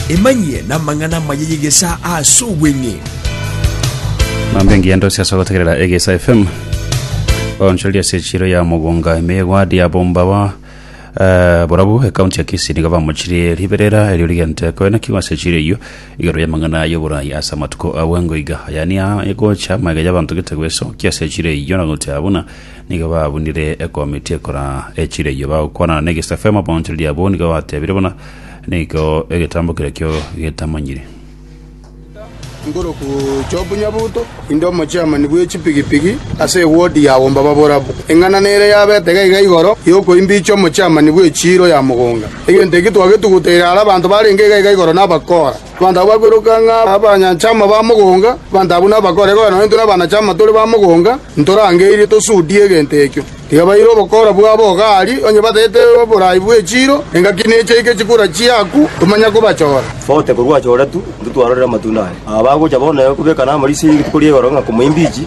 Emanyie namang'ana amaya y'egesaa ase obweng'e. Mambe engiya ndose ase ogotegerera egesa fm onchoreria ase echiro ya mogonga ime egwadi abomba ba eh, borabu ekaunti ya kisii nigo bamochirie riberera erio rigente koena kiwa ase echiro eyio igoro ya mang'ana y'oborai ase amatuko abwango iga ayani egocha magega y'abanto gete gwesokia ase echiro eyio na gotea buna Nigo babunire ekomiti ekora echire eyio, bagokwanana negesafema bonsi riria abwo nigo batebire buna nigo egetambo keria kio getamanyire. Ngoroku Job Nyabuto, inde omochiamani bwe chipigipigi ase ewodi ya Womba Baborabu. Eng'ana nere yabete gaiga igoro y'okoimbiicha omochiamani bwe chiiro ya mogonga. Egento eki twagetuguteire are abanto barenge gaiga igoro n'abakora. Abanto abwo bakoiroka ng'a abanyanchama ba mogonga, abanto abwo nabakore, korende nonya intwe nabanachama tore ba mogonga, ntorangeirie tosudie egento ekio. Tiga baire obokora bwabo iga aria, onye batagete oborai bwe chiiro, engaki neche aike chikura chiaku, tomanya kobachora. Bote korwa achore tu, intwe twarorire amatunda aye. Aba bagocha bono naye kobekana amariso ye rituko ri'igoro ng'a komoimbichi.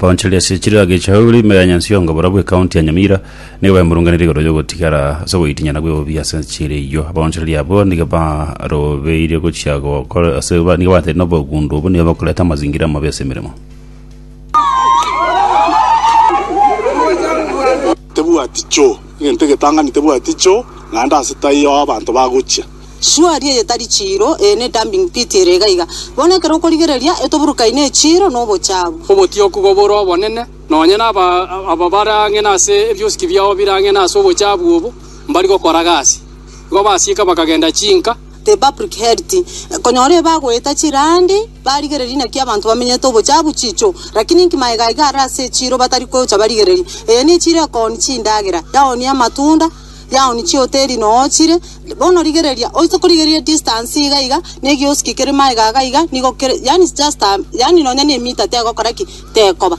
Baonchoreria ase chirira gechahuri ime ya Nyansiongo barabwo ekaunti ya Nyamira nigo baimurunganire igoro riogotigara ase ogoitinya na bweobi ase enchera eyio abaonchoreria abwo nigo barobeire gochia gokora ase ba- nigo bateire na obogundu obo nigo bakoreta amazingira amabe ase emeremo Tebwati choo, egento egetang'ani tebwati choo, naende ase taiyo aho abanto bagochia. Suari eye tari chiiro, eye ne dumping pit ere iga iga. Bono ekero okorigereria, etoburukaine echiiro na obochabu. Obotioku bobore obonene, nonye na aba bare ang'e nase ebiosiki biao bire ang'e nase obochabu obo, mbari gokora gasi. Igo basiika bakagenda chinka. The Public Health, konyora ebe agoeta chirandi barigereria naki abanto bamenyete obochafu chicho, lakini inki maega iga are ase echiro batari kocha barigereria? Eye nechiro ekooni chindagera, yaoni amatunda, yaoni chihoteli noochire. Bono rigereria, oise korigereria distance iga iga negioski kere maega iga iga nigo kere, yaani just a, yaani nonya ne mita tegokora ki? Tekoba.